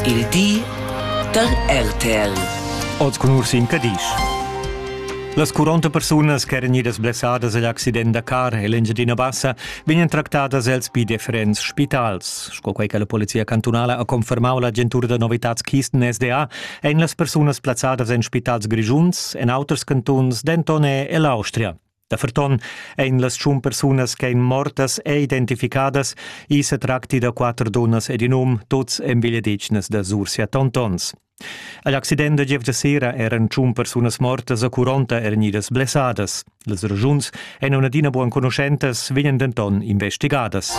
Il di dal RTL. Oz cun Ursin Cadisch. Las 40 persunas ch'eran idas blessadas agl accident da car en l'Engiadina Bassa vegnan tractadas els pi differents spitals. Sco quei che la polizia cantunala ha confermau l'agentura da novitads Kisten SDA, ein las persunas plazzadas en spitals grischuns, en auters cantuns, denton e ell'Austria. Da ferton ein las tschun persunas ch'ein mortas e identificadas, i se tracti da quater dunnas ed in um, tuts envigliadetgnas da Sursia Tontons. Agl accident da gevgia sera eran tschun persunas mortas a Curonta er nidas blessadas. Las ragiuns ein adina buan conoscentas, vegnan denton investigadas.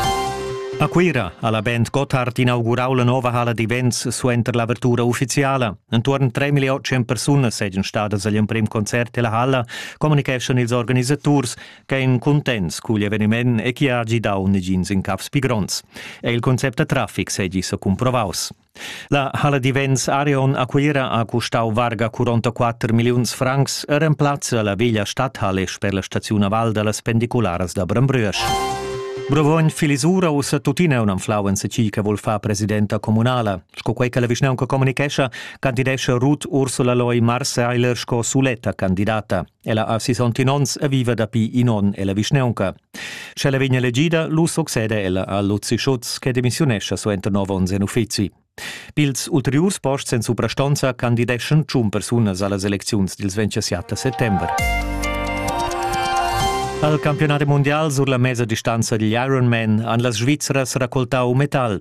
A Cuira ha la Band Gotthard inaugurau la nova hala d'events suenter l'avertura ufficiala. Entuorn 3.800 persunas seigien stadas agl emprem concert della halla communicheschan ils organisaturs ch'ein cuntents cugl eveniment e chi ha gidau negins in cafs pi gronds. E il concept da traffic segi sa cumprovaus. La Halle di Vents Arion a Cuira ha custau varga 44 milliuns francs e remplazza la veglia stadhalle sper la staziun a Val dallas pendicularas da Brembrüesch. Brovogn Filisura ussa tuttina un'anflau en se chi che vol far presidenta comunala. Sco quei che la vischnaunca comunicescha, candidescha Ruth Ursula Loy Marseiler sco suletta candidata. Ella ha 61 onns e viva dapi in onn ella vischneunca. Sch'ella vegn elegida, lu succede ella a Luzi Schutz che demissiunescha suenter nov onns en uffizi. Pils ulteriurs posts en suprastonza candideschan tschun persunas allas elecziuns dils 27 settember. Al campionat mundial sur la mesa distanza digl Ironman han las Svizras raccoltau metal.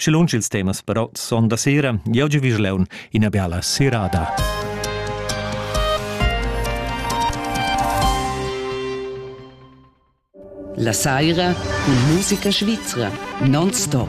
Sche lunsch ils temas però son da sera, jau gi vigl leun ina biala serada. La saira cun musica svizra non stop.